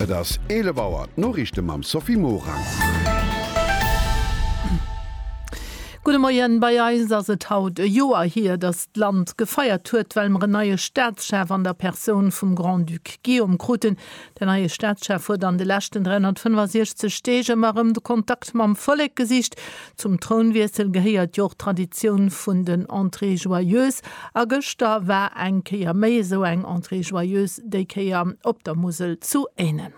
Et ass 11 Auer, d'Noriichte mam Sophie Morang. Gudde Moien, bei eis ass et haut e Joer hier, datt d'Land gefeiert huet, well mer en neie Staatschef an der Persoun vum Grand-Duc Guillaume kruten. Den neie Staatschef huet an de leschten 365 Deeg ëmmer erëm de Kontakt mam Vollek gesicht, Zum Trounwiessel gehéiert jo och d'Traditioun vun den Entrées joyeuses a gëschter war eng Kéier méi esou eng Entrée joyeuse, déi Kéier op der Musel zu Ehnen.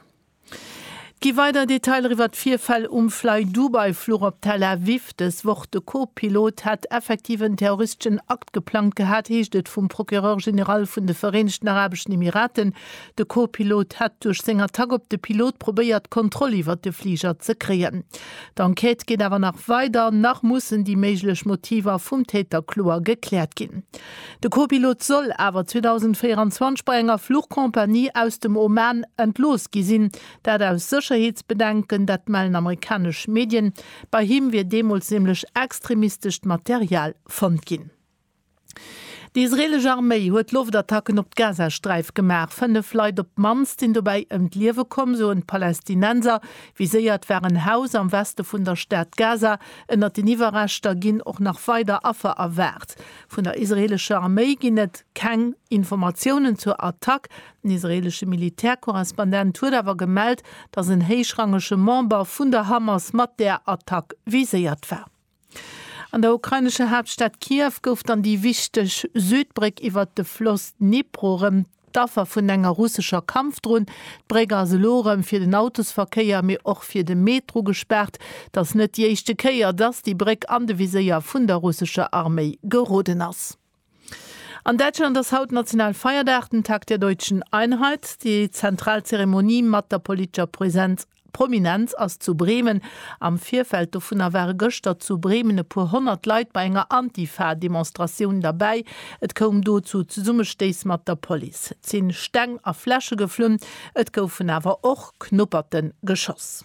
Et gi weider Detailer iwwer d'Virfäll um Flydubai-Fluch op Tel Aviv dës Woch. De Co-Pilot hätt effektiv en terroristeschen Akt geplangt gehat, heescht et vum Procureur général vun de Vereenegten Arabeschen Emiraten. De Co-Pilot hätt duerch seng Attack op de Pilot probéiert, d'Kontroll iwwert de Fliger ze kréien. D'Enquête geet awer nach weider. Nach mussen déi méiglech Motiver vum Täter kloer gekläert ginn. De Co-Pilot soll awer 2024 bei enger Fluchcompagnie aus dem Oman entlooss gi sinn. Dat aus Sécherheetsbedenken, dat mellen amerikanesch Medien. Bei him wier deemools nämlech extremistescht Material fonnt ginn. Déi israeelesch Arméi huet Loftattacken op d'Gazasträif gemaach. Fënnef Leit op d'mannst sinn dobäi ëm d'Liewe komm, soen d'Palästinenser. Viséiert war en Haus am Weste vun der Stad Gaza. Ënnert den Iwwerreschter ginn och nach weider Affer erwaart. Vun der israeelescher Arméi ginn et keng Informatiounen zur Attack. Den israeelesche Militärkorrespondent huet awer gemellt, datt en héichrangege Member vun der Hamas mat där Attack viséiert war. An der ukrainescher Haaptstad Kiew gouf dann déi wichteg Südbréck iwwert de Floss Dnipro rëm d'Affer vun enger russescher Kampfdron. D'Bréck ass elo erëm fir den Autosverkéier, mee och fir de Metro gespaart. Et ass net déi éischte Kéier, dass déi Bréck an de Viséier vun der russescher Arméi geroden ass. An Däitschland ass haut Nationalfeierdag, den Tag der deutschen Einheit. Déi zentral Zeremonie mat der politescher Präsenz, Prominenz ass zu Bremen. Am Virfeld dovunner ware gëschter zu Bremen e puer honnert Leit bei enger Antifa-Demonstratioun derbäi. Et koum do zu Zesummestéiss mat der Police. Et si Steng a Fläsche geflunn, et goufen awer och Knupperten geschoss.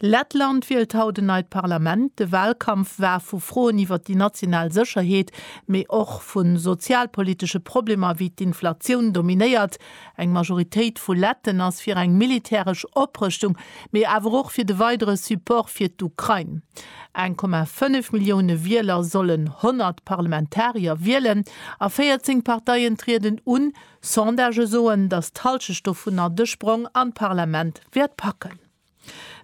Lettland wielt haut en neit Parlament. De Walkampf war vu Froen iwwer déi national Sécherheet, mee och vu sozialpolitesche Problemer wéi d'Inflatioun dominéiert. Eng Majoritéit vu Letten ass fir eng militäresch Oprëschtung, mee awer och fir de weidere Support fir d'Ukrain. 1,5 Millioune Wieler sollen 100 Parlamentarier wielen a 14 Parteien trieden un, Sondagë soen, datt d'Hallschecht dovunner de Sprong an d'Parlament wäert packen.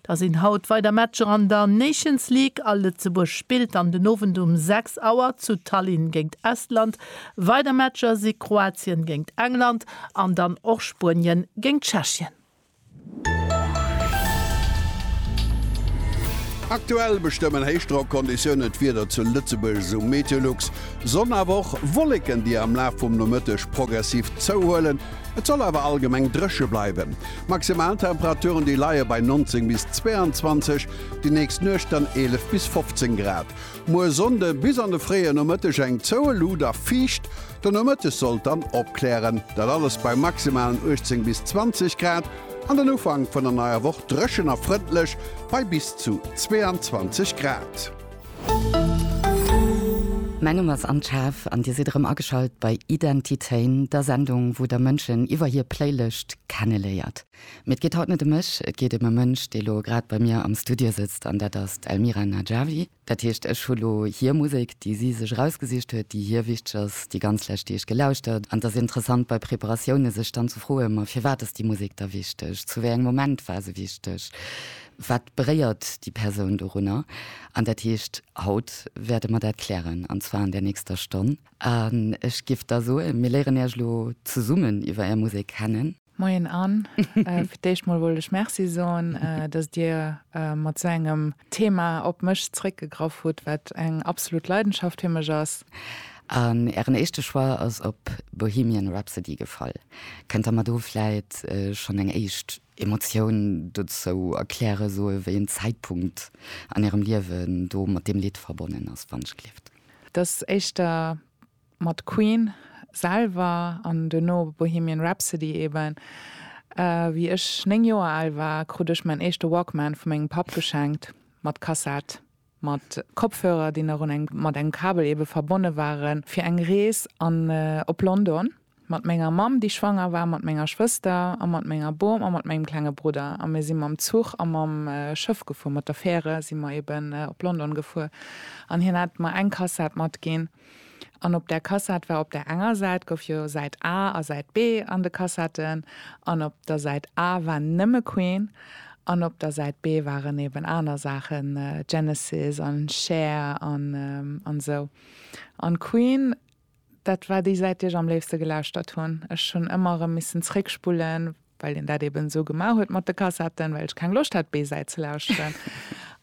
Da sinn haut weider Matcher an der Nations League a Lëtzebuerg spillt dann den Owend um 6 Auer zu Tallinn géint Estland. Weider Matcher si Kroatien géint England an dann och Spuenien géint Tschechien. Aktuell bestëmmen Héichdrockkonditiounen d'Wieder zu Lëtzebuerg, esou Meteolux. Sonn awer och Wolleken, déi am Laf vum Nomëtteg progressiv zouhuelen. Et soll awer allgemeng dréche bleiwen. Maximaltemperaturen déi leie bei 19 bis 22, déi nächst Nuecht dann 11 bis 15 Grad. Muer Sonnde bis an de fréie Nomëtteg eng zoueluucht a fiicht. Den Nomëttes sollt dann opklären, dat alles bei maximalen 18 bis 20 Grad, an den Ufank vun der neier Woch dréchen a frëndlech bei bis zu 22 Grad. Mäin Numm ass Anne Schaaf an Dir sidd erëm ageschalt bei Identitéin, der Sendung, wou Der Mënschen iwwer hir Playlëscht kenneléiert. Mee et geet haut net ëm mech, et geet ëm e Mënsch, dee elo grad bei mir am Studio sëtzt, an dat ass d'Elmira Najavi. Dat heescht, ech hu lo hir Musek, déi si sech erausgesicht huet, déi hir wichteg ass, déi ganz lescht Deeg gelauschtert. An et ass interessant bei Preparatioune sech dann ze froen, ma firwat ass déi Musek da wichteg, zu wéi engem Moment war se wichteg, wat beréiert déi Persoun dorunner? An dat heescht, haut wäerte mer dat klären, an zwar an där nächster Stonn. An ech géif da soen, mir léieren Iech lo zesummen iwwer Är Musek kennen. Moien an fir d'éischt mol wollt ech Merci soen, datt Dir mat sou engem Thema op mech zeréckgegraff hutt, wat eng absolut Leidenschaft fir mech ass. An Ären éischte Choix ass op Bohemian Rhapsody gefall. Kënnt Der mer do vläit schonn eng éischt Emotioun dozou erklären, soe wéi en Zäitpunkt an Ärem Liewen do mat deem Lidd verbonnen ass, Wann ich gelift? Et ass éischter mat Queen selwer an duerno Bohemian Rhapsody eben. Wéi ech 9 Joer al war, krut ech mäin éischte Walkman vu mengem Papp geschenkt, mat Kassett, mat Kopfhörer, déi nach un eng, mat engem Kabel eben, verbonne waren, fir eng Rees an, op London. Mat menger Mamm, déi schwanger war, mat menger Schwëster a mat menger Bom a mat mengem klenge Brudder. A mir si mam Zuch a mam Schëff gefuer, mat der Färe si mer eben op London gefuer. An hien hat mer eng Kassett matginn. An op där Kassett war op där enger Säit gouf jo Säit A a Säit B an de Kassetten. An op der Säit A war nëmme Queen an op der Säit B waren eben aner Saachen, Genesis an Cher an esou. An Queen Dat war déi Säit, déi ech am léifste gelauschtert hunn. Ech hunn ëmmer erëm missen zréckspullen, well een dat eben esou gemaach huet mat de Kassetten, well ech keng Loscht hat, d'B-Säit ze lauschteren.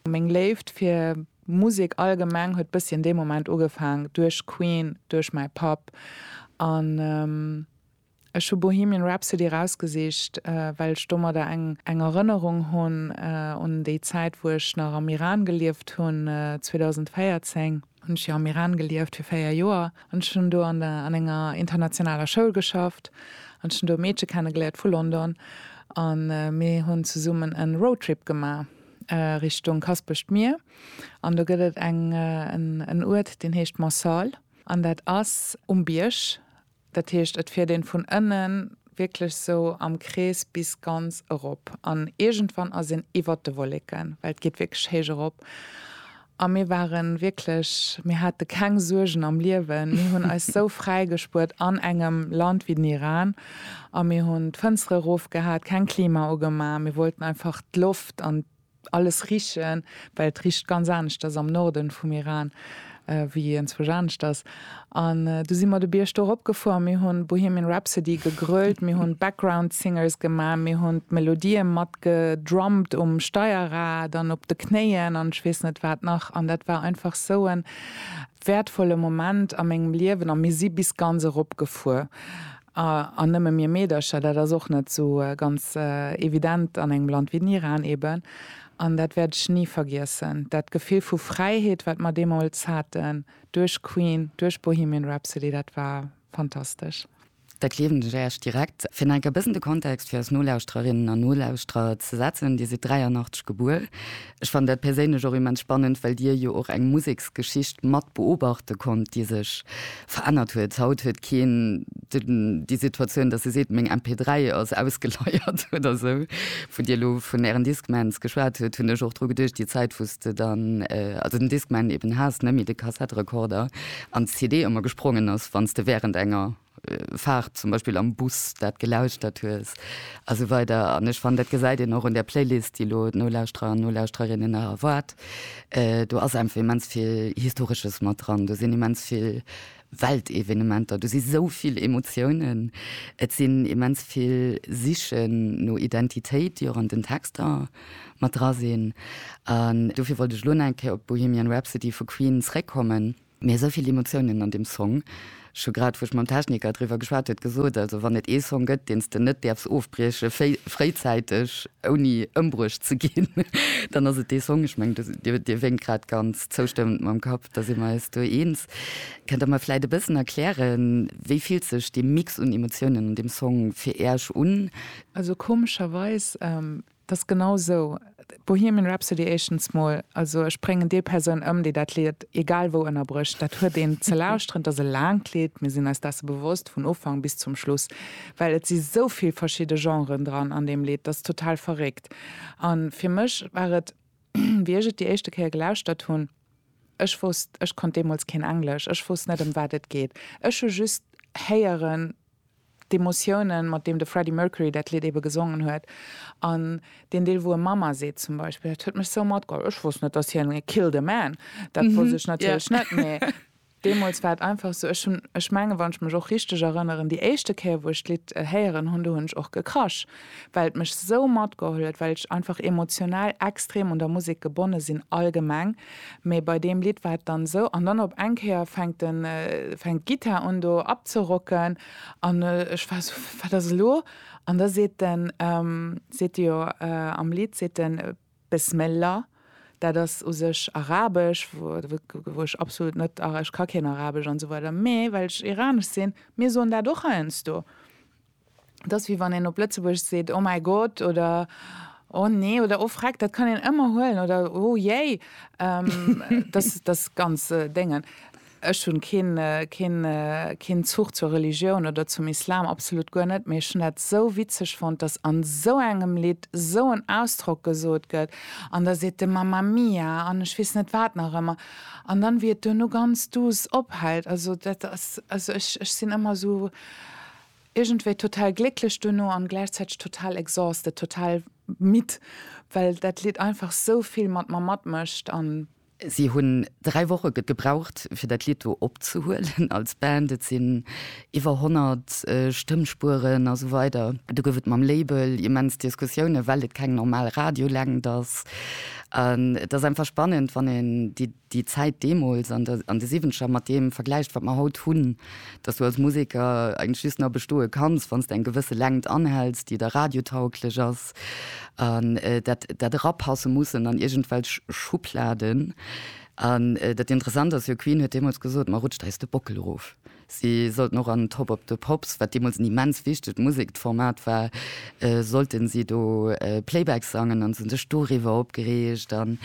Meng Léift fir Musek allgemeng huet bëssi an deem Moment ugefaang, duerch Queen, duerch mäi Papp an. Ech hu Bohemian Rhapsody erausgesicht, well ech domadder eng eng Erënnerung hunn un déi Zäit, wou ech nach am Iran gelieft hunn. 2014 hunn ech jo am Iran gelieft, fir véier Joer. An ech hunn do an an enger internationaler Schoul geschafft an ech hunn do e Meedche kennegeléiert vu London. A mir hunn zesummen e Roadtrip gemaach Richtung Kaspecht Mier. An do gëtt et eng en en Uert, deen heescht Mansal. An dat ass um Bierg. Dat heescht, et fiert een vun ënnen wierklech sou am Krees bis ganz erop an iergendwann ass een iwwert de Wolleken, well et geet wierklech héich erop. A mir waren wierklech, mir hate keng Suergen am Liewen, mir hunn eis sou fräi gespuert an engem Land wéi den Iran a mir hunn d'Fënstere rof gehat, keng Klima ugemaach, mir wollten einfach d'Loft an Alles richen, well et richt ganz aneschters am Norden vum Iran wéi ienzwech aneschters. An du si mer de Bierg do erop gefuer, mir hunn Bohemian Rhapsody gegrölt, mir hunn Background Singers gemaach, mir hunn d'Melodien mat gedrummt um Steierrad an op de Knéien an ech weess net wat nach. An dat war einfach sou en wäertvolle Moment a mengem Liewen. A mir si bis ganz erop gefuer. A, an nëmme mir Meedercher, dat ass och net sou ganz evident an engem Land wéi den Iran eben, an dat wäert ech ni vergiessen, dat Gefill vu Fräiheet, wat mer deemools haten, duerch Queen, duerch Bohemian Rhapsody, dat war fantastesch. Da kleewen ech Äech direkt fir enk e bëssen de Kontext fir eis Nolauschtererinnen an Nolauschterer ze setzen. Dir sidd 83 gebuer, Ech fannen dat perséinlech och immens spannend, well Dir jo och eng Museksgeschicht mat beobachte konnt, déi sech verännert huet. Haut huet keen déi Situatioun, datt e seet, meng MP3 ass ausgeleiert oder esou. Wou Dir elo vun Ären Discmans geschwat hutt, hunn ech och dru geduecht, déi Zäit wou s de dann also den Discman eben has, net méi de Kassetterekorder an d'CD ëmmer gesprongen ass, wann s de wärend enger, Faart zum Beispill am Bus dat gelauschtert hues a sou weider. An ech fannen, dat gesäit een och un där Playlist, déi elo d'Nolauschterer an d'Nolauschterinnen erwaart, do ass einfach immens vill Historesches mat dran, do sinn immens vill Weltevenementer, do si sou vill Emotiounen, et sinn immens vill Sichen no Identitéit, déi och an den Texter mat dra sinn. An dofir wollt ech elo nach eng Kéier op Bohemian Rhapsody vu Queen zréckkommen. Mee esou vill Emotiounen an deem Song. Ech hu grad, wou ech mam Techniker driwwer geschwat huet, gesot, also wann et ee Song gëtt, deen s de net däerfs ofbrieche fréizäiteg, ouni ëmbruecht ze ginn, dann ass et dee Song. Ech mengen, Dir wénkt grad ganz zoustëmmend mam Kapp, da si mer eis do eens. Kënnt Der mer vläicht e bëssen erklären, wéi fillt sech dee Mix un Emotiounen an deem Song fir Äerch un? Also komescherweis Et ass genau sou. Bohemian Rhapsody éischtens mol, also ech bréngen déi Persoun ëm, déi dat Lied egal wou ënnerbrécht. Dat huet een ze lauschteren. Et ass e laangt Lied. Mir sinn eis dessen bewosst, vun Ufank bis zum Schluss, well et si sou vill verschidde Genren dran an deem Lied. Dat ass total verréckt. A fir mech war et, wéi ech et déi éischte Kéier gelauschtert hunn, ech wosst, ech konnt deemools keen Englesch, ech wosst net, ëm wat et geet. Ech hu just héieren, D'Emotiounen, mat deem de Freddie Mercury dat Lidd ebe gesongen huet, an deen Deel, wou e Mama seet zum Beispill, dat huet mech sou matgeholl. Ech wosst net, dass hien killed a man, dat wosst ech natierlech net, mee deemools war et einfach sou. Ech hunn, ech mengen, wann ech mech och richteg erënneren, déi éischte Kéier, wou ech d'Lidd héieren hunn, do hunn ech och gekrasch. well et mech sou matgeholl huet, well ech einfach emotional extrem un der Musek gebonne sinn allgemeng, mee bei deem Lidd war et dann esou. An dann op eng Kéier fänkt de fänkt d'Gittar un do abzerocken an ech war esou, wat ass elo? An da seet de seet de jo am Lidd seet de Besmella, dat ass u sech arabesch, wou wou ech absolut net, ech ka keen arabesch an esou weider, mee well ech iranesch sinn, mir soen dat och heiansdo. Et ass wéi wann een op Lëtzebuergesch seet Oh mäi Gott oder Oh nee oder Oh freck, dat kann een ëmmer huelen oder Oh jéi, dass dass ganz Déngen. Ech hunn keen keen keen Zuch zur Religioun oder zum Islam, absolut guer net, mee ech hunn dat esou witzeg fonnt, dass an esou engem Lidd esou en Ausdrock gesot gëtt an da seet de Mamma Mia an ech weess net wat nach ëmmer an dann wéi et duerno ganz douce ophält. Also dat ass also ech ech sinn ëmmer esou iergendwéi total glécklech duerno an gläichzäiteg total exhausted, total midd, well dat Lidd einfach sou vill mat mer matmécht an. Si hunn dräi Woche gebraucht, fir dat Lidd do opzehuelen als Band. Et sinn iwwer 100 Stëmmspueren a sou weider. Do gouf et mam Label immens Diskussiounen, well et keng normal Radiolängt ass. An et ass einfach spannend, wann een déi. déi Zäit deemools an der an de Siwwenzeger mat deem vergläicht, wat mer haut hunn, dass du als Museker eigentlech just nach bestoe kanns, wann s de eng gewësse Längt anhälls, déi da radiotauglech ass, an dat dat erapasse mussen an iergendwelch Schubladen. An dat Interessant ass jo, Queen huet deemools gesot, mer rutscht eis de Bockel erof. Si sollten och an Top of the Pops, wat deemools en immens wichtegt Musekformat war, sollten si do Playback sangen an se hunn sech doriwwer opgereegt. An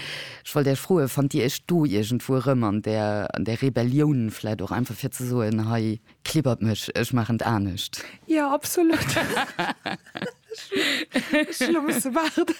ech wollt Iech froen, fannt Dir Iech do iergendwou erëm an där, an där Rebellioun vläicht och einfach fir ze soen, hei klibbert mech, ech maachen et anescht? Jo, absolut. Ech hun lo musse waarden,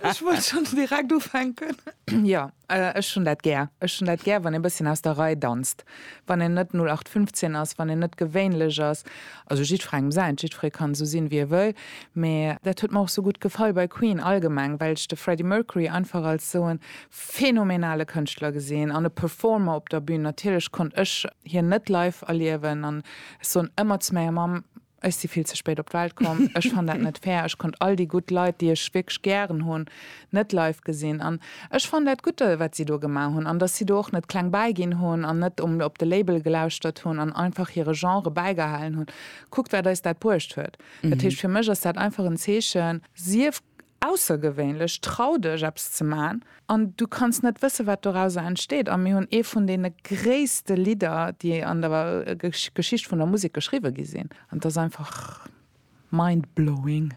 ech wollt schons direkt ufänken. Jo, ech hun dat gär. Ech hun dat gär, wann een bësschen aus der Rei danzt, wann een net 0815 ass, wann een net gewéinlech ass. Also jiddferengem säint, jiddferee kann esou sinn, wéi e wëll, mee dat huet mer och esou gutt gefall bei Queen allgemeng, well ech de Freddie Mercury einfach als esou e phänomenale Kënschtler gesinn an e Performer op der Bühn. Natierlech konnt ech hien net live erliewen an ech soen ëmmer zu menger Mamm, Ech si vill ze spéit op d'Welt komm. Ech fann dat net fair. Ech konnt all déi gutt Leit, déi ech wierklech gären hunn, net live gesinn. An ech fann dat gutt, wat si do gemaach hunn, an dass si do och net kleng bäiginn hunn an net um op de Label gelauschtert hunn an einfach hire Genre bäigehalen hunn. Kuckt, wat eis dat bruecht huet. Dat heescht, fir mech ass dat einfach en Zeechen, sief Aussergewéinlech, trau dech eppes ze man an du kanns net wësse wat dorauser entsteet. A mir hunn ee vun deene gréisste Lidder déi an der Geschicht vun der Musek geschriwwe gi sinn an et ass einfach mind blowing.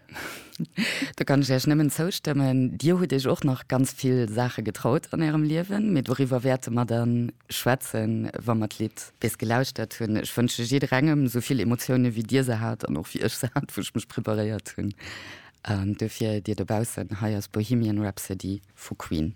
Do kann ech Iech nëmmen zoustëmmen. Dir hutt Iech och nach ganz vill Saache getraut an Ärem Liewen, mee doriwwer wäerte mer dann schwätzen, wa mer d'Lidd bis gelauschtert hunn. Ech wënsche jidderengem esou vill Emotioune wéi Dir se hat an och wéi ech se hat, wou ech mech preparéiert hunn. An duerfir, dir dobaussen, hei ass Bohemian Rhapsody vu Queen.